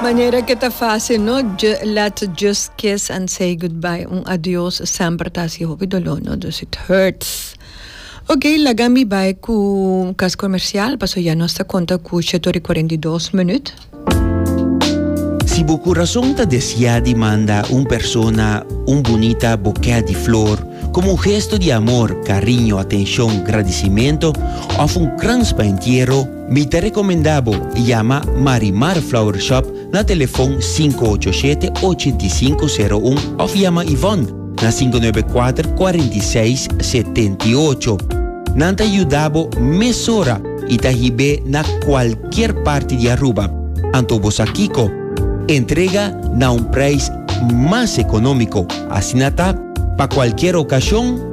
Manera ke ta fásil, no? Ju, let's just kiss and say goodbye. Un adiós semper ta hasi hopi doló, no? Dus it hurts. Oké, laga mi bai ku kas komersial, paso ya nos ta konta ku shet ora i kuarenta i dos minüt. Si bo kurason ta desiá di manda un persona un bunita bokè di flor komo un gesto di amor, kariño, atenshon, gradisimentu òf un krans pa entiero, Mi ta recomenda bo yama Marimar Flower Shop na telefon sinku ocho shete ochenta i sinku sero un of yama Yvonne na sinku nuebe kuater kuarenta i seis setenta i ocho. Nan ta yuda bo mesora i ta hib'é na kualkier parti di Aruba. Anto bo sa kiko? Entrega na un prijs mas economico, asina ta pa kualkier ocasion.